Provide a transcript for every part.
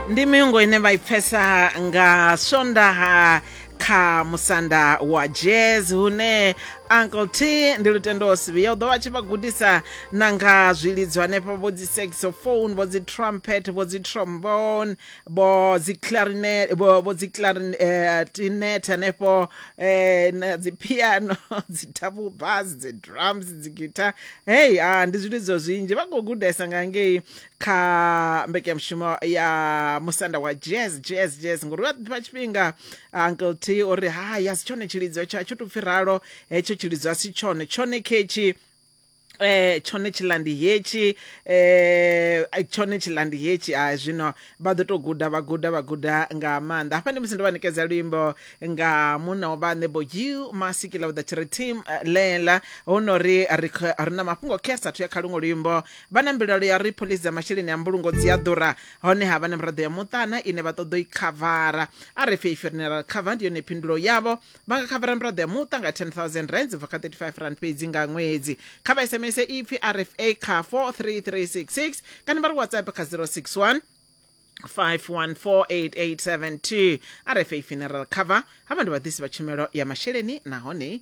ndi miungo ine vha i pfesa nga swondaha kha musanda wa jazz hune uncle t ndi lutendo osivi yo ḓo vha tshi vha gudisa na nga zwilidzo hanefho vho dzi saxophone vho dzi trumpet vho dzi trombone vho dzi clarinet vho vho dzi clarinet hanefho eh, na dzi piano dzi double bass dzi drums dzi guitar hey ah, ndi zwilidzo zwinzhi vha khou gudesa nga ngei kha mbekanyamushumo ya musanda wa jazz jazz jazz ngori wa ḓifha tshifhinga uncle t uri ha ya si tshone tshilidzo tsha tsho tupfi ralo hetsho tshilidzo a si tshone tshone khetshi eh tshone tshilandi hetshi eh ai, tshone tshilandi hetshi a zwino vha ḓo to guda vha guda vha guda nga maanḓa hafha ndi musi ndo vha ṋekedza luimbo nga munna wa vhaṋe bo you masikila with the chiri team eh, lela hu no ri ri kho- ri na mafhungo khe sathu ya kha luṅwe luimbo vha na mbilaelo ya uri phoḽisi dza masheleni a mbulungo dzi a ḓura honeha vha na miraḓo ya muṱana ine vha ṱoḓa u i khavara a re fei funeral cover ndi yone phindulo yavho vha nga khavara miraḓo ya muṱa nga 10000 rands ubva kha 35 rand fhedzi nga ṅwedzi kha vha sms ipfi rfa kha 43366 kana vha ri whatsapp kha 061 5148872 rfa funeral cover havha ndi vhaḓisi vha tshumelo ya masheleni nahone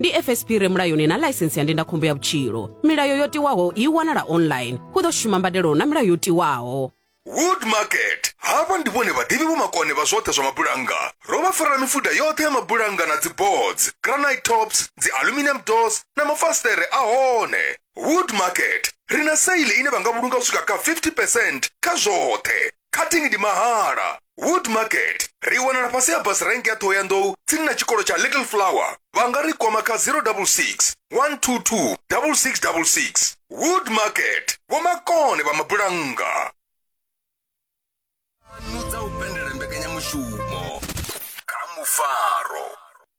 ndi fsp re mulayoni na ḽaisensi ya ndindakhombo ya vhutshilo milayo yo tiwaho i wanala online hu ḓo shuma mbadelo na milayo yo tiwaho wood market havha ndi vhone vhaḓivhi vhomakone vha zwoṱhe zwa mabulannga ro vha farela mifuda yoṱhe ya mabulannga na dziboards granite tops dzi aluminium doors na mafasiṱere a hone wood market ri na saile ine vha nga vhulunga u swika kha 50 percent kha zwoṱhe cutting ndi mahala wood market ri wanala fhasi ha bus rank ya ṱhohoyanḓou tsini na tshikolo tsha little flower vha nga ri kwama kha 066 122 6666 wood market vhomakone vha mabulannga dza u pendelela mbekanyamushumo kha mufaro